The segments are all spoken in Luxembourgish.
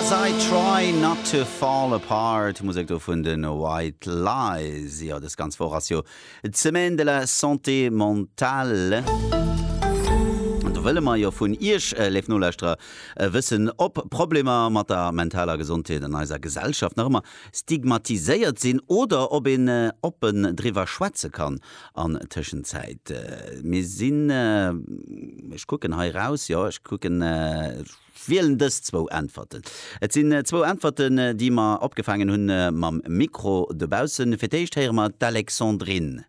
As I try not to fall apart, Musek do vun den White Lies. Jo, des ganz Woch ass jo d'Semaine de la Santé Mentale. An do wëlle mer jo vun Iech, léif Nolauschterer, wëssen, ob Problemer mat der mentaler Gesondheet an eiser Gesellschaft nach ëmmer stigmatiséiert sinn oder ob een oppen driwwer schwätze kann. An Tëschenzäit, mir sinn, ech kucken hei raus, jo, ech kucken, ech wielen dës zwou Äntwerten. Et sinn zwou Äntwerten, déi mer opgefaangen hunn mam Mikro dobaussen. Fir d'éischt héiere mer d'Alexandrine.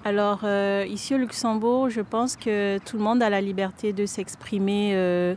Alors, ici au Luxembourg, je pense que tout le monde a la liberté de s'exprimer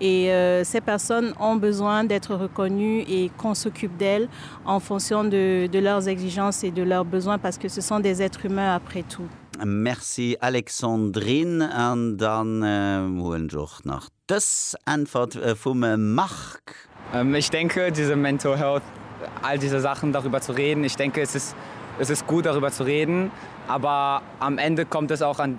et ces personnes ont besoin d'être reconnues et qu'on s'occupe d'elles en fonction de de leurs exigences et de leurs besoins parce que ce sont des êtres humains après tout. Merci Alexandrine. An dann huelen ech och nach dës Äntwert vum Marc. Ich denke, diese mental health, all diese Sachen darüber zu reden, ich denke es ist es ist gut darüber zu reden, aber am Ende kommt es auch an,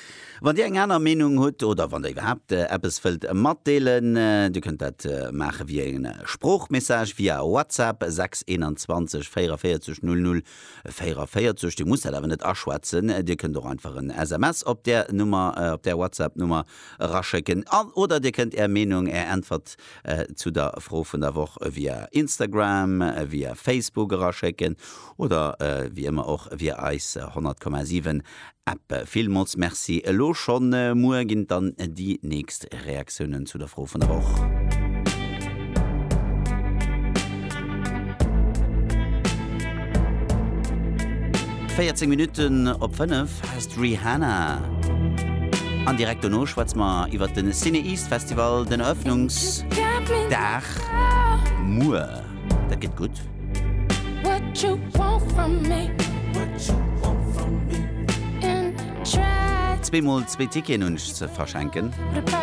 Wann Dir eng aner Meenung hutt oder wann Der iwwerhaapt eppes wëllt matdeelen, Dir kënnt dat maache via e Sproochmessage via WhatsApp 621 44 00 44. Dir musst dat awer net aschwätzen, Dir kënnt och einfach en SMS op där Nummer, op där WhatsApp-Nummer eraschécken oder Dir kënnt Är Meenung, Är Äntwert zu der Fro vun der Woch via Instagram, via Facebook eraschécken oder wéi ëmmer och via eis 100,7 App. Villmools Merci elo schonn. Muer ginn et dann déi nächst Reaktiounen zu der Fro vun der Woch. Véierzéng Minutten op fënnef ass d'Rihanna an direkt dono schwätze mer iwwert de Cine East Festival, den Eröffnungsdag muer. Dat gëtt gutt. What you want from me? What you want from me? Zwee mol zwee Ticketen hunn ech ze verschenken.